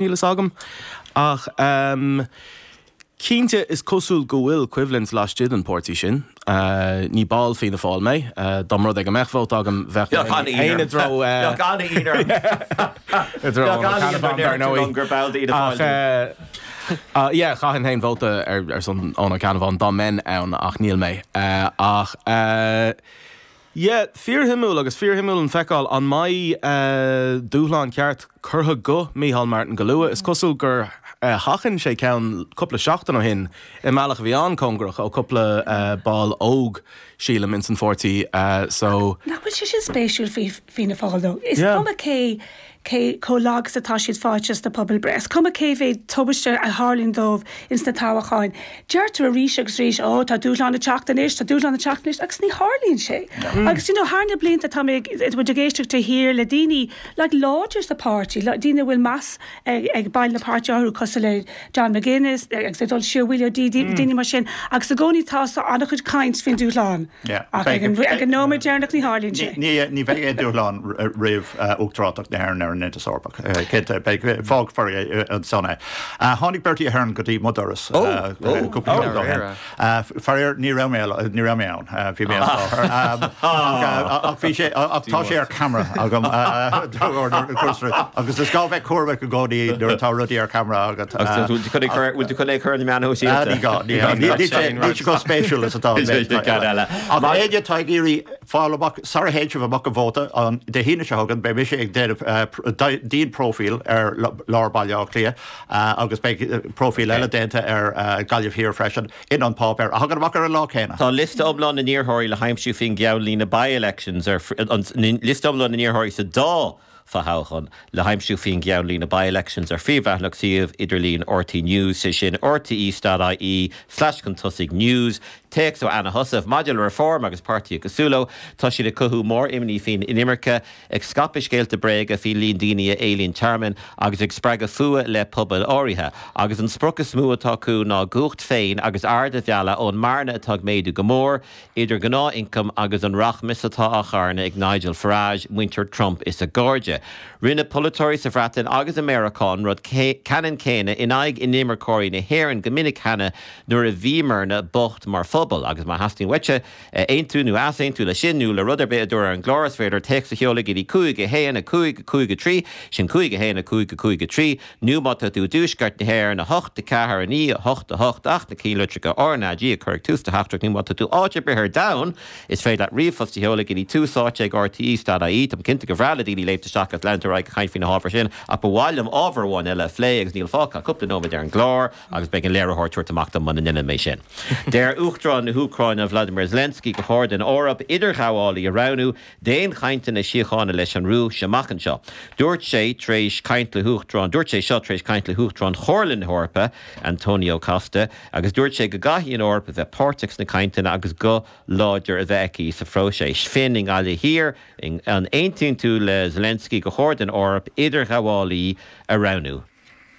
Níl fhios agam. Ach cinnte is cosúil go bhfuil coimhlint laistigh den pháirtí sin. Ní ball Fianna Fáil mé. Dá mba rud é go mbeadh vóta agam bheadh mé féin i dtreo Fianna Fáil. Bheadh an-ionadh orm. Bheadh an-ionadh orm, dar ndóigh, gur ball d'Fhianna Fáil tú. Ach yeah, chaithfinn féin vóta ar son Eoghan Ó Ceannabháin dá mbeinn ann, ach níl mé. Ach. Yeah, fíorshuimiúil, agus fíorshuimiúil a fheiceáil an mbeidh dúshlán ceart curtha go Micheál Martin go luath. Is cosúil gur sheachain sé ceann cúpla seachtain ó shin i mbealach a bhí an-cóngarach, ó cúpla ball óg, sílim, insan pháirtí, so. Nach bhfuil sé sin spéisiúil faoi Fianna Fáil, though? Is cuma cé. cé chomh lag is atá siad fáighte is na pobalbhreitheanna. Is cuma cé mhéad tubaiste a tharlaíonn dóibh ins na toghcháin, deirtear arís agus arís, Ó, tá dúshlán ag teacht anois, tá dúshlán ag teacht anois, agus ní tharlaíonn sé. Agus do you know, thar na blianta tá mé ag, muid ag éisteacht de shíor le daoine like láidir sa pháirtí, daoine a bhfuil meas ag baill an pháirtí orthu cosúil le John McGuinness agus ag dul siar Willie O'Dea, daoine mar sin, agus i gcónaí tá an-chuid caint faoin dúshlán. Ach ag an nóiméad deireanach ní tharlaíonn sé. Ní bheidh aon dúshlán roimh uachtaránacht na hÉireann ar an Aontas Eorpach, cinnte. Fágfar ansan é. Tháinig Bertie Ahern go dtí mo dhoras cúpla seachtain ó shin. Faraor ní raibh mé ann, bhí mé as láthair. Ach tá sé ar ceamara agam. Agus is gá bheith cúramach i gcónaí nuair atá rudaí ar ceamara agat. Agus tú chun ag cur- bhfuil tú chun ag cur na meáin shóisialta? Ní gá, ní gá. Ní- ní sé- ní sé chomh spéisiúil is atá an méid Níl cad eile. Ach Mar- éinne atá ag iarraidh fáil amach sara théann sibh amach ag vótáil an Dé hAoine seo chugainn, beidh mise ag déanamh eh, pr- dai- díonpróifíl ar l- lár Baile Átha Cliath eh, agus beidh eh, próifíl eile déanta ar eh, Gaillimh Thiar freisin. in An Páipéar a thagann amach ar an lá céanna. Tá liosta iomlán na n-iarrthóirí le haimsiú faoin gceannlíne By-Elections tá liosta iomlán na n-iarrthóirí sa dá fothoghchán le haimsiú faoin gceannlíne By-Elections ar phríomhleathanach suíomh idirlín RTÉ News, sé sin rte.ie slash chun tosaigh news. Téacs ó Anna Heussaff maidir le Reform agus páirtithe cosúil leo, tá siad ag cothú mór-imní faoin inimirce. ag scaipeadh scéalta bréaga faoi líon daoine a éilíonn tearmann agus ag spreagadh fuath le pobail áirithe, agus an sprioc is mó atá acu ná cumhacht dóibh féin agus aird a mhealladh ón mbearna atá ag méadú go mór idir an gnáth-ioncam agus an rachmas atá á charnadh ag Nigel Farage, muintir Trump is a gcairde. Rinne polaiteoirí sa Bhreatain agus i Meiriceá an rud ceannann céanna in aghaidh inimirceoirí na hÉireann go minic cheana nuair a bhíomarna bocht mar phobal, agus má theastaíonn uaitse, a aontú nó a easaontú leis sin nó le rud ar bith a dúradh ar an gclár. Is féidir téacs a sheoladh go dtí 5-1, 5, 5-3, sin 5-1, 5, 5, 3, nó má tá tú i dTuaisceart na hÉireann, 8, 4, 9, 8, 8, ach na ceannlitreacha RnaG a chur ag tús do theachtaireacht, nó má tá tú áit ar bith ar domhan, is féidir leat ríomhphost a sheoladh go dtí túsáite@rte.ie. Táim cinnte gur bhreá le daoine léimt isteach agus leanúint ar aghaidh ag caint faoi na hábhair sin, ach ba mhaith liom ábhar amháin eile a phlé agus níl fágtha ach cúpla nóiméad ar an gclár. agus beidh an léiritheoir ag tabhairt amach dom muna ndeinim é sin. Deir Uachtarán na hÚcráine Volodymyr Zelensky gur chóir don Eoraip idirghabhálaí a roghnú d'aon chainteanna síochána leis an Rúis amach anseo. Dúirt sé tar éis caint le hUachtarán dúirt sé seo tar éis caint le hUachtarán Chomhairle na hEorpa, Antonio Costa, agus dúirt sé go gcaithfidh an Eoraip a bheith páirteach sna cainteanna agus guth láidir a bheith aici sa phróiseas. Finn i nGaillimh Thiar. An aontaíonn tú le Zelensky gur chóir don Eoraip idirghabhálaí a roghnú?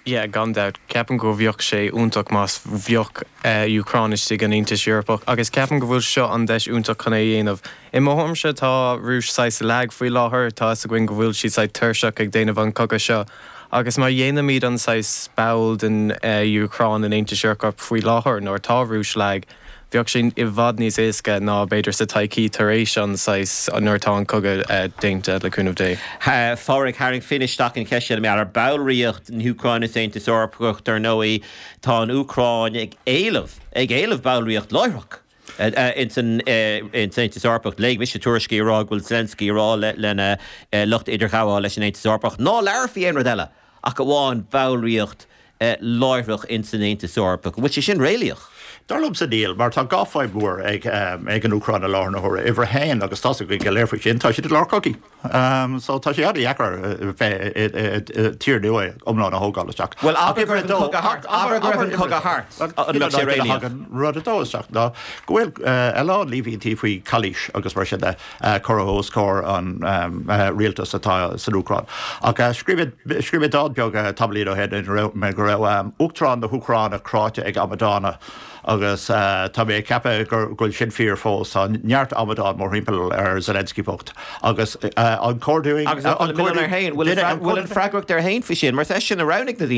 Yeah, gan dabht. Ceapaim go bheadh sé iontach más bheadh Úcráin istigh an Aontas Eorpach, agus ceapaim go bhfuil seo an deis iontach chun é dhéanamh. I mo thuairmse tá Rúis saghas lag faoi láthair, tá fhios againn go bhfuil siad saghas tuirseach ag déanamh an cogadh seo, agus má dhéanaimid an saghas ball den Úcráin in Aontas Eorpach faoi láthair nuair tá Rúis lag, Bheadh sé i bhfad níos éasca ná b'fhéidir sa todhchaí tar éis an saghas nuair atá an cogadh déanta, le cúnamh Dé. Pádraig, Tharraing Finn isteach an cheist mar gheall ar ballraíocht na hÚcráine san Aontas Eorpach. Dar ndóigh, tá an Úcráin ag éileamh, ag éileamh ballraíocht láithreach ins an Aontas Eorpach. Léigh mise tuairiscí ag rá go bhfuil Zelensky ag rá lena lucht idirghabhála leis an Aontas Eorpach, ná labhair faoi aon rud eile. ach amháin ballraíocht láithreach ins an Aontas Eorpach. An bhfuil sé sin réalaíoch? Dar liomsa, níl, mar tá dhá fadhb mhór ag an Úcráin i láthair na huaire. Uimhir a haon, agus tá's againn go léir faoi sin, tá siad i lár cogaidh so tá sé an-deacair tír nua iomlán a thógáil isteach. Bhuel, abair go raibh an cogadh thart, an mbeadh sé réalaíoch? Rud a dó isteach ná go bhfuil a lán líomhaintí faoi chalaois agus mar sin de. curtha os comhair an rialtais atá san Úcráin. Ach scríobh mé dán beag, tamallín ó shin, ina raibh mé go raibh Uachtarán na hÚcráine cráite ag amadána, agus tá mé ag ceapadh go bhfuil sin fíor fós. Tá neart amadán mórthimpeall ar Zelensky bocht. Agus an chuardaigh? Agus an bhfuil an freagracht air fhéin faoi sin? Mar is é sin a roghnaigh na daoine.